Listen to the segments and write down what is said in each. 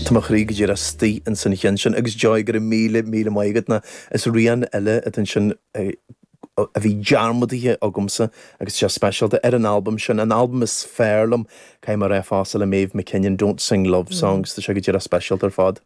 Tá mo chroí go díreach istigh ins an cheann sin, agus Joy, go raibh míle míle maith agat ná is rian eile atá ansin a bhí dearmadaithe agamsa agus tá sé speisialta ar an albam sin, an albam is fearr liom, caithfidh mé a rá, fosta le Maeve Mackinnon, Don't Sing Love Songs, tá sé go díreach speisialta ar fad.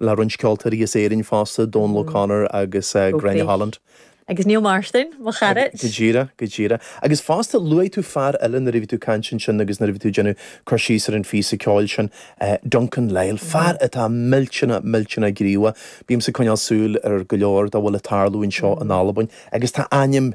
le roinnt ceoltóirí as Éirinn fosta, Dónal O'Connor agus Gráinne Holland. Agus Neil Martin, mo chara! Go díreach, go díreach. Agus fosta, luaigh tú fear eile nuair a bhí tú ag caint ansin agus nuair a bhí tú ag déanamh cur síos ar an phíosa ceoil sin, Duncan Lyall, fear atá millteanach, millteanach gníomhach. Bímse ag coinneáil súil ar go leor dá bhfuil ag tarlú anseo in Albain agus tá a ainm,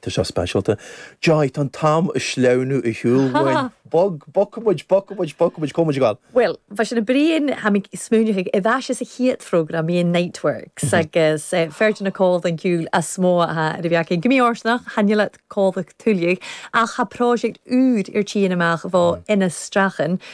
Tá seo speisialta. Joy, tá an t-am ag sleamhnú ar shiúl uainn. Bog, bogfaidh muid, bogfaidh muid, bogfaidh muid, comhfhad ag an. Bhuel, bhuel, sin a Bhriain, tha mi a' smaoineachadh, air ais anns a' chiad phrògram, bhí an Niteworks agus fear de na còmhlain ciùil as motha a th' air a bhith againn. Gu mì-fhortanach, chan eil iad còmhla tuilleadh ach tha pròiseact ùr air tighinn a-mach bho Innes Strachan.